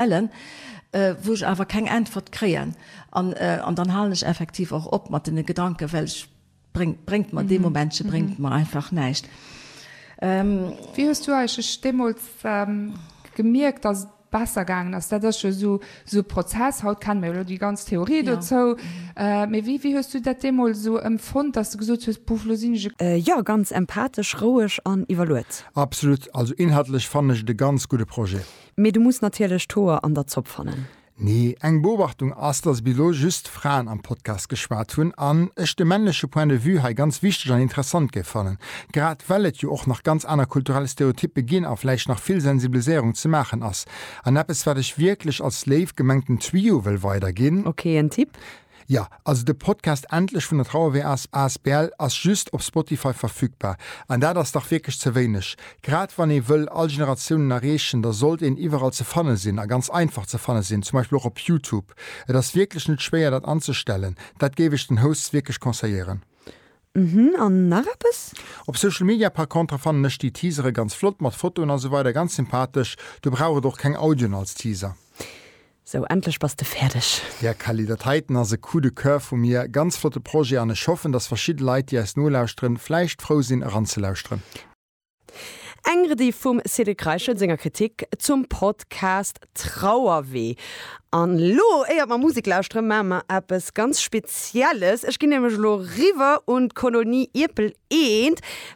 stellen, wou ech awer keng Äntwert kréien. An, an dann halen ech effektiv och op mat deene Gedanken, well ech, bréngt, bréngt mer, dee Momentche bréngt mer einfach näischt. Wéi hues du eigentlech deemools gemierkt, dass et besser gaangen ass? Dat ass jo esou, esou e Prozess. Haut kenne mir jo elo déi ganz Theorie dozou. Mee wéi, wéi hues du dat deemools esou empfonnt, dass du gesot hues, Buff, lo sinn ech e. Jo, ganz empathesch, roueg an iwwerluet. Absolut. Also inhaltlech fannen ech et e ganz gudde Projet. Mee du muss natierlech d'Hoer an der Zopp fannen. Nee, eng Beobachtung ass, dass bis elo just Fraen am Podcast geschwat hunn an ech de männleche Point de vue hei ganz wichteg an interessant géif fannen, grad well et jo och nach ganz aner kulturell Stereotyppe ginn a vläicht nach vill Sensibiliséierung ze maachen ass. An eppes wat ech wierklech als léif gemengten Tuyau wëll weiderginn. Ok, en Tipp. Jo, also de Podcast Endlech vun der Trauerwehr as asbl ass just op Spotify verfügbar, an dat ass dach wierklech ze wéineg. Grad wann ee wëll all Generatiounen erreechen, da sollt een iwwerall ze fanne sinn, a ganz einfach ze fanne sinn, zum Beispill och op Youtube. Et ass wierklech net schwéier dat anzestellen, dat géif ech den Hosts wierklech conseilléieren. Mhm, an nach eppes? Op Social Media par contre fannen ech déi Teasere ganz flott, mat Fotoen a sou weider, ganz sympathesch. Do brauch et och keng Audioen als Teaser. Sou, endlech bass de fäerdeg. Här Kelly, dat heiten ass e Coup de coeur vu mir. Ganz flotte Projet an ech hoffen, dass verschidde Leit, déi eis nolauschteren, vläicht frou sinn, eranzelauschteren. Eng Rediff vum Cédric Reichel senger Kritik zum Podcast Trauerwee. An elo, éiert mer Musek lauschteren, maache mer eppes ganz Spezielles. Ech ginn nämlech elo riwwer un d'Kolonie Ierpel I,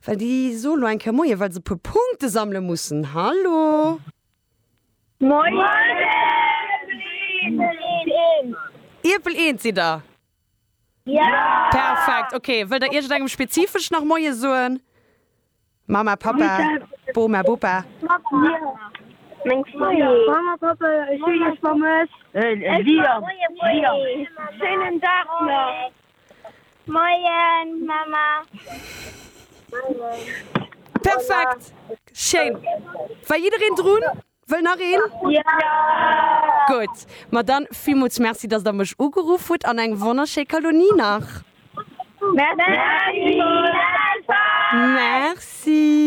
well déi soe elo eng Kéier Moien, well se e puer Punkte sammele mussen. Hallo! Moien Ierpel 1! Ierpel 1 sidd der? Jo! Perfekt! Ok, wëllt der iergendengem spezifesch nach Moie soen? Mama, Papa, Boma, Bopa? Meng Famill! Mama, Papa, ech hu iech vermësst! Ech soe Moien! Schéinen Dag nach! Moien Mama. Perfekt! Schéin! War jiddereen drun? Wëll nach een? Gutt, ma dann villmools Merci, dass der mech ugeruff hutt an eng wonnerschéi Kalonie nach! Merci! Merci!